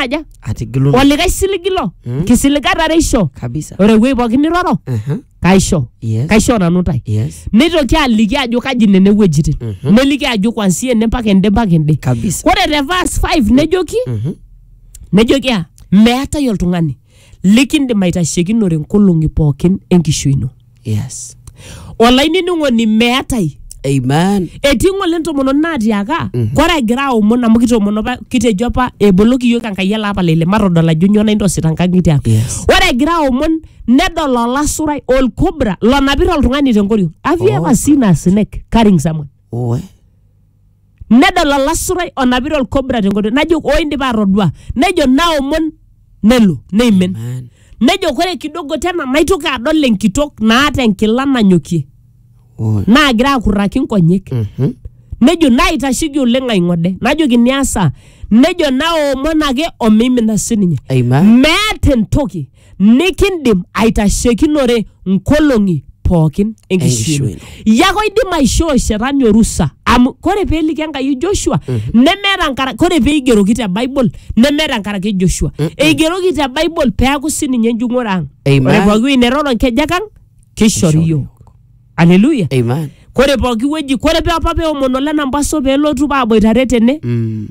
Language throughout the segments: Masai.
ata aja atigilun olikae siligi ilo Mm. kisiligata are isho kabisa ore ewuei pookin niroro Aha, kaisho yes kaisho nanu ntae yes neitoki aliki ajo kaji nene wuejitin Mhm. neliki ajo kwansia ene mpaka ende mpaka ende kabisa ore te verse 5 nejoki Mhm. nejoki a meetae oltung'ani likindim aitashekinore nkolong'i pookin enkishui ino yes olainining'oni meetai amen etii ng'ole ntomononi naatiaka kore egira aomon amu kitoomono apa kitejo apa eboloki yiok enkai ele apa lele matodol ajo nyoo naintosita nkang'itie ang Yes. ore egira aomon nedol olasurai olkobra lonapita oltung'ani tenkoriong have you Oh. ever seen a snake carrying someone Oe. nedol olasurai onapita olkobra tenkoitoi najo oo indipa atodua nejo naomon nelo neimin Amen. nejo kore kidogo tena naitoki adol enkitok naata enkila nanyokie Oh. naagira akurraki nkonyek Mhm. nejo naitasheki oleng aing'ode najoki niasa nejo naomon ake omeimina sininye Amen. meeta entoki nikindim aitashekinore nkolong'i pookin enkishui ino. Enkishui Yako idim aishoo shetani orusa amu kore peeliki Enkai Joshua nemeeta nkara kore peigeroki te Bible nemeeta nkaraki Joshua. Eigeroki te Bible peaku sininye enjung'ore ang'. Amen. Ore pooki wuei neroro nkejek ang' keishori Keishori yook. aleluya Amen. kore pooki wueji kore pe apa peomon ole nambaso pelotu paaboitare tene Mm.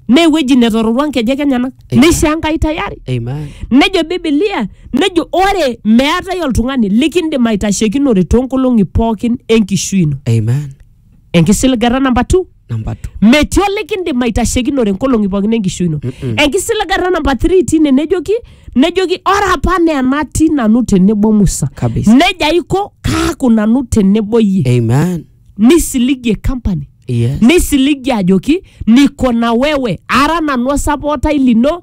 naa ewueji netororua nkejek enyenak Amen. neishaa enkai tayari Amen. nejo bibilia nejo ore meetae oltung'ani likindim aitashekinore toonkolong'i pookin enkishui ino Amen. Enkisiligata namba 2. Number two. Metii olikindim aitashekinore inkolong'i pookin enkishui ino. Enkisiligata namba 3 tine nejoki nejoki ore apa naa enatii nanu tenebo Musa. Kabisa. Neja aiko kaaku nanu tenebo iyie. Amen. Nisiligie company. Yes. Nisiligie ajoki niko na wewe ara nanu osapootai lino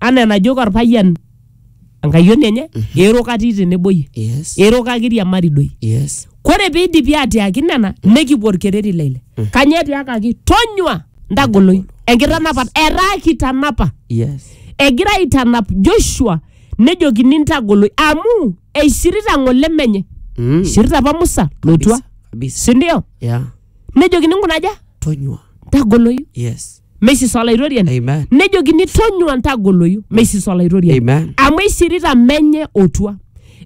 anaa enajoki orpayian enkayioni enye eero katii tenebo iyie yes eero kakiriamari doi yes kore piidipi atiaki nena nekipuo orkereri le ile kanyoo etiakaki tonyua ntagoloi enkitanapat etaa kitanapa yes egira aitanap joshua nejokini ntagoloi amu eishirita ng'ole menye mm. ishirita apa musa lotua kabisa sindio yeah nejokini nkuna aja tonyua ntagoloyu yes meisisa olaitoriani Amen. nejokini tonyua ntagoloyu meisisa olaitoriani Amen. amu eishirita menye otua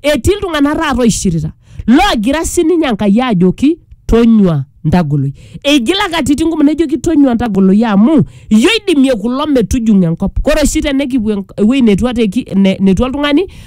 etii iltung'anak taata oishirita loogira sininye enkai ajoki tonyua ntagoloi eigila katitin kumok nejoki tonyua ntagoloi amu iyio idimie kulo metujung'o enkop kore oshi tenekipuo enk- ewueji netua teki- ne- netua oltung'ani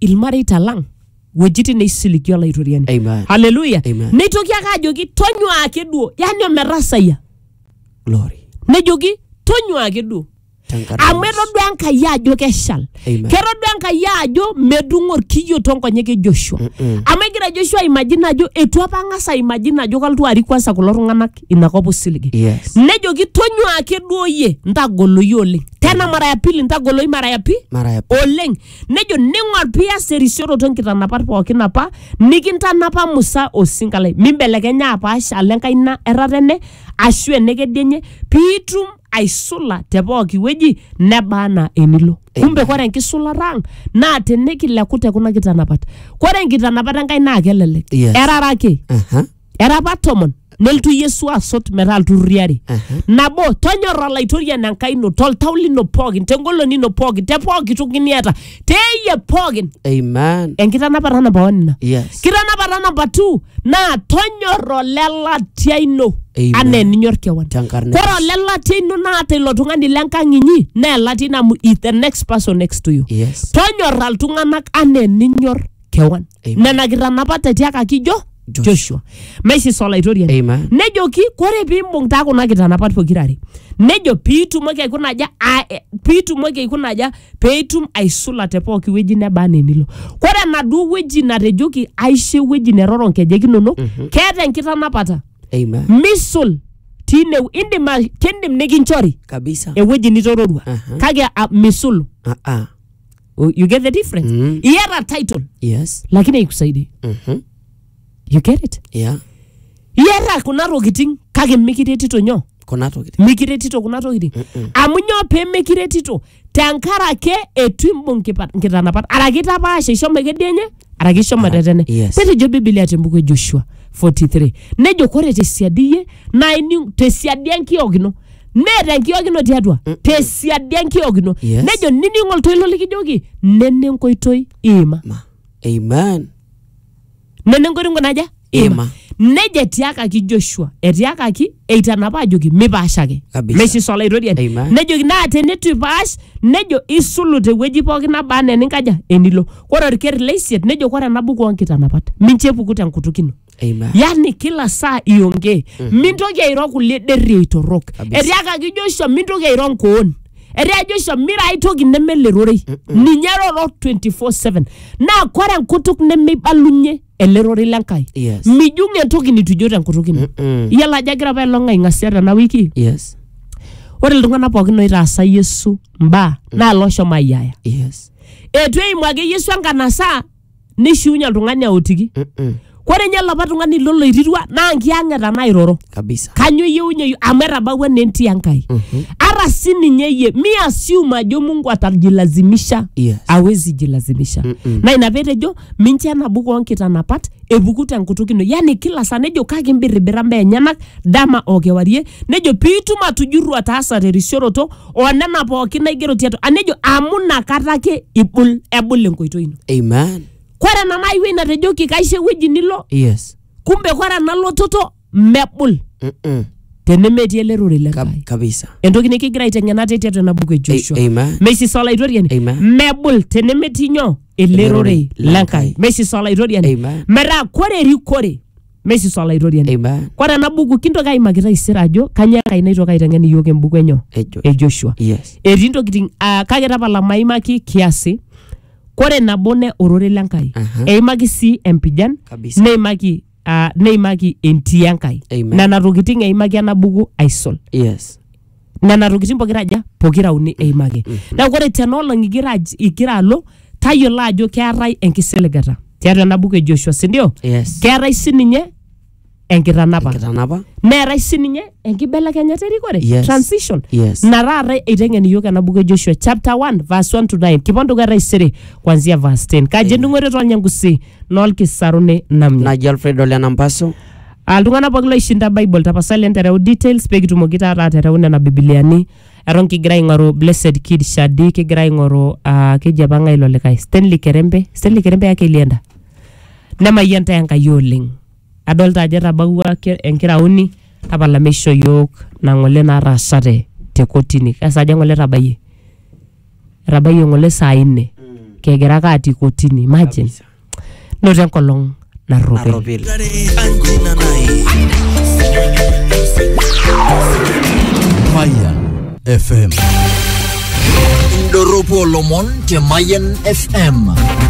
ilmareita lang wuejitin neisiligio olaitoriani Amen. haleluya Amen. neitoki ake ajoki tonyua ake duo yani ometasayia Glory. nejoki tonyua ake duo Tenkaraki amu Yesu. etodua enkai ajo keshal Amen. ketodua enkai ajo medung'o orkiyio tonkonyek e joshua amu egira joshua aimajina ajo etu apa ang'as aimajina ajo kalotu arik kwansa kulo tung'anak inakop osiligi Yes. nejoki tonyua ake duo yie ntagoloyu oleng tena mara ya pili ntagoloyu mara ya pi Mara ya oleng nejo ning'or pias erisioroto nkitanapat pookin apa nikintanapa Musa osinka lai mimbelekenya apaash alo enkaina erratene ashu enekedienye piitum aisula te pooki wueji neba anaa enilo kumbe kore enkisulata ang naa tenikileku te kuna kitanapat kore nkitanapat enkai naa kelelek Yes. erara ake Aha. era apa tomon nelotu yesu asot metaa ilturrurri are nabo tonyorra olaitoriani enkai ino toltau lino pookin tengolon ino pookin te pooki toki niata teeyie pookin Amen. enkitanapata namba one ina Yes. kitanapata namba two naa tonyorra olelatia ino Amen. anaa eninyor kewan Tenkarna ore olelatia ino naata ilo tung'ani lenkang inyi naa elatia ino amu is the next person next to you Yes. tonyorra iltung'anak anaa eninyor kewan Amen. nena kitanapat etiakaki jo Joshua. joshua maisis olaitoriani Amen. nejoki kore piimbung taa kuna kitanapat pokirare nejo piitumoki aikuna aja a- e- piitumoki aikuna aja peitum aisula te pooki wueji neba anaa enilo kore enaduo wueji natejoki aisho ewueji neroro nkejek inonok keeta enkitanapata Amen. misul tiine indim a- kindim nikinchori Kabisa. ewueji nitororua Aha. kake a- misulu Ah, ah. U- you get the difference Mm. iera title yes lakini haikusaidii Mhm. you get it yeah iera kuna tokitin kake mikiretito nyoo kuna tokitin mikiretito kuna tokitin amu nyoo pee mikiretito tenkarake etu imbung kipa- nkitanapat araki itapaasha ishomo ekedienye araki ishomo tetene yes. netejo bibilia tembuku e joshua 43 nejo kore tesiadi iyie naa ining tesiadi enkiok ino neeta enkiok ino tiatua tesiadi enkiok ino Yes. nejo nining oltoilo likijoki nene nkoitoi iima Ma. Amen. nene nkoitoi nkunaja Ima. nejo etiakaki joshua etiakaki eitanapa ajoki mipaashaki Kabisa. meisisa olaitoriani Amen. nejoki naa teneitu ipaash nejo isulu tewueji pooki nabaa anaa eninkaja enilo ore orker leisiet nejo ore ena buku oonkitanapat mincho epuku tenkutuk ino Amen. yani kila saa iongee mintoki airo kulie derriei torrok Kabisa. etiakaki joshua mintoki airo nkoon etia joshua mira ai toki neme lerorei ninye roro 24/7 naa kore enkutuk nemeibalunye ele rorei le Nkai. Yes. Mijung entoki nitu ijo tenkutuk ino. Mm-mm. Iyiolo ajo egira apa elong aing'asia tena wiki. Yes. Ore iltung'anak pookin oitaasa Yesu mbaa naa looshomo ayiaya. Yes. Eitu eimu ake Yesu enkanasa nishiunye oltung'ani aotiki. Mm-mm. Ore ninye olapa tung'ani loloirirua naa nkiyang'eta nairoro. kabisa kanyo iyeunye amu etabawua naa entii enkai ara si ninye iyie mi assume ajo mungu atajilazimisha Yes. awezi jilazimisha na ina petejo minche enabu koonkitanapat epuku tenkutuk ino yani kila saa nejo kake imbirribira mbaa enyenak dama o kewarie nejo piitum atujurru ataasa terisioroto onena pookin naigero tiatua a nejo amu nakata ake ibul ebul enkoitoi ino amen kore ena naiwuei natejoki kaisho ewueji nilo yes kumbe kore ena lototo mebul Mm-mm. tenemetii ele rorei le Kab- Nkai. kabisa entoki nikigira aiteng'ena te tiatua ena buku e Joshua. A- amen. Meisisa olaitoriani Amen. mebul tenemetii nyoo ele Ele rorei rorei le le Nkai. Nkai. Meisisa olaitoriani Amen. metaa kore erikore meisisa olaitoriani. Amen. Kore ena buku kintoki aimaki taisere ajo kanyoo Enkai naitoki aiteng'en iyiook embuku enyo Ejo. e Joshua. Yes. Etii ntokitin ah, kake tapala maimaki kiasi kore nabo ne ororei le Nkai Aha. eimaki sii empijan Kabisa. neimaki ah, neimaki entii Enkai Amen. nena tokitin eimaki ena buku aisul yes nena tokitin pokira aja pokira uni eimaki neeku ore tenaolong igira aj- igira alo tayiolo ajo keetae enkisiligata tiatua ena buku e Joshua sindio yes keetae sininye enkitanapa enkitanapa neetai sininye enkibelekenyata erikore Yes. transition Yes. na taata eiteng'en iyiok ena buku e joshua chapter 1 verse 1 to 9 kipon dukuya taisere kwanzia verse 10 kaji endung'oto toonyangusi noolkisaruni namnya naji alfredo lenampaso Ah, iltung'anak pooki loishinda bible tapasali entereu details pee kitumoki taata atereu nena bibiliani eton kigira aing'oru blessed kid shadi kigira aing'oru ah, keji apa ng'ae ilo likae stanley kerembe stanley kerembe ake elienda Nemayian intae Enkai oleng. Adolita ajo etabawua enkiraoni tapala meishoo iyiook ina ng'ole nataasate te kotini. Kaa saa dii eng'ole etabayie? Etabayie eng'ole saa nne kigira ake atii kotini imagine. Noto enkolong narropil. Mayan FM. Indorropu olomon te Mayan FM.